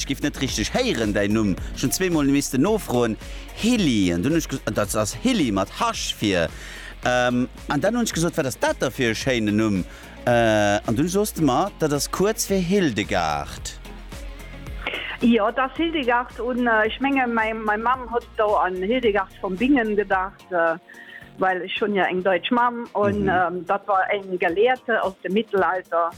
Ech giff net richteg héieren däin Numm, schon zwee mol missten nofroen, Hilly, an dunn hunn ech gesot, dat ass Hilly mat Hach vir, an dann hunn ech gesot, wat ass dat da fir e schéinen Numm, an dunn soos de mer, dat ass kuerz fir Hildegard. Jo, et ass Hildegard, hunn ech menge mäi Mamm hotdo an Hildegard von Bingen gedacht. Well ech hunn jo eng Deutsch Mamm an dat war eng Gelehrte aus dem Mittelalter.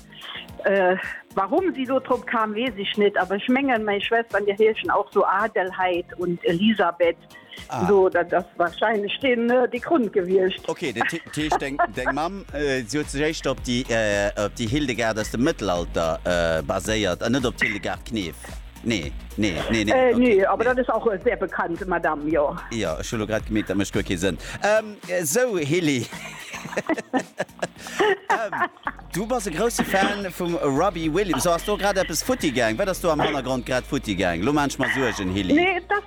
Warum si do drop kam, weess ech net, awer ech mengen, meng Schwester an hir heeschen och sou Adelheid und Elisabeth, sou dat ass wahrscheinlech dee Grund gewiescht. Ok, dat heescht deng Mamm, si huet sech éischter op déi Hildegard aus dem Mëttelalter baséiert an net op d'Hildegard Knef? Nee, nee, nee, nee. Äh, nee, aber dat ass och e sehr bekannte Madame, jo. Ja, ech hu lo grad gemeet, dat mécht guer kee Sënn. Ähm, sou, Hilly. Ähm, du bass e grousse Fan vum Robbie Williams. Ass do grad eppes futti gaang? Wat ass do am Hannergrond grad futti gaang? Lo maachen ech mer Suergen, Hilly. Nee, dat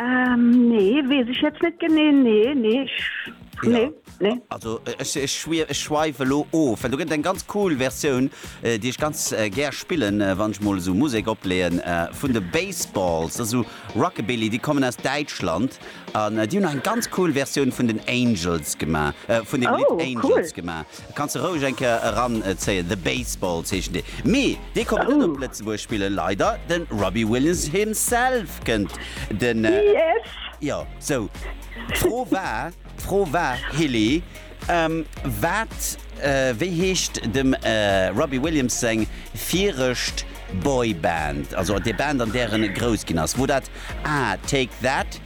Ähm, nee, wees ech jetzt net genee, nee, nee, ech, ja. nee. Nee. Also ech, ech, schwier, ech schweife lo of, well du gëtt eng ganz cool Versioun, äh, déi ech ganz äh, gär spillen, äh, wann ech mol esou Musek opleeën, äh, vun de Baseballs, also Rockabilly, déi kommen aus Däitschland an äh, déi hunn eng ganz cool Versioun vun den Angels gemaach, äh, vun den oh, Lied Angels cool. gemaach. Kanns de roueg eng Kéier eran zéien, The Baseballs heeschen déi. Mee dee konnt net op Lëtzebuerg spillen, leider. De Robbie Williams himself kënnt. Den, jo, sou. D'Fro war, d'Fro war, Hilly, wat, wéi heescht dem Robbie Williams seng virescht Boyband, also déi Band an där en grouss ginn ass, wor dat A, Take That,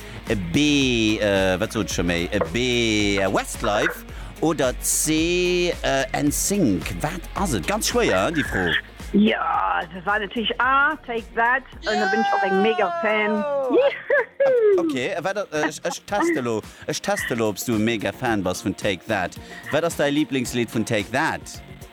B, wat sot ech scho méi, B, Westlife oder C, NSYNC? Wat ass et? Ganz schwéier, hein, déi Fro. Jo, dat war natierlech A, Take That, an da sinn ech och eng mega Fan. Ok, ech teste elo, ech teste elo, ob s du e mega Fan bass vun Take That. Wat ass däi Liblingslidd vun Take That?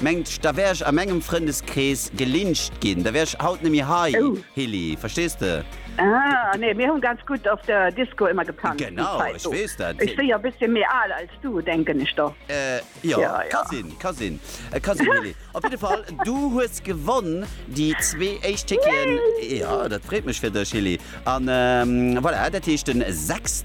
Mengt, da wär ech a mengem Frëndeskrees gelynscht ginn, da wär ech haut nemmi hei, Hilly, verstees de? Ah, nee, mir hu ganz gutt op der Disco emmer gepanzt déi Zäit do. Ech si jo bësschen méi al als du, denken ech do. Jo, ka sinn, ka sinn, ka sinn, Hilly. Op jidde Fall, du hues gewonn déi zwee éischt Ticketen. Jo, dat freet mech fir dech, Hilly. A voilà, dat heescht den 6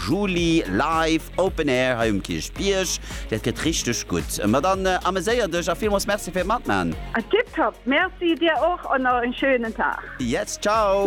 Juli live Open Air hei um Kierchbierg. Dat gëtt richteg gutt. Ma dann ameséier dech a villmools Merci fir d'Matman. Tiptop, Merci dir och an nach en schönen Tag. Yes, ciao.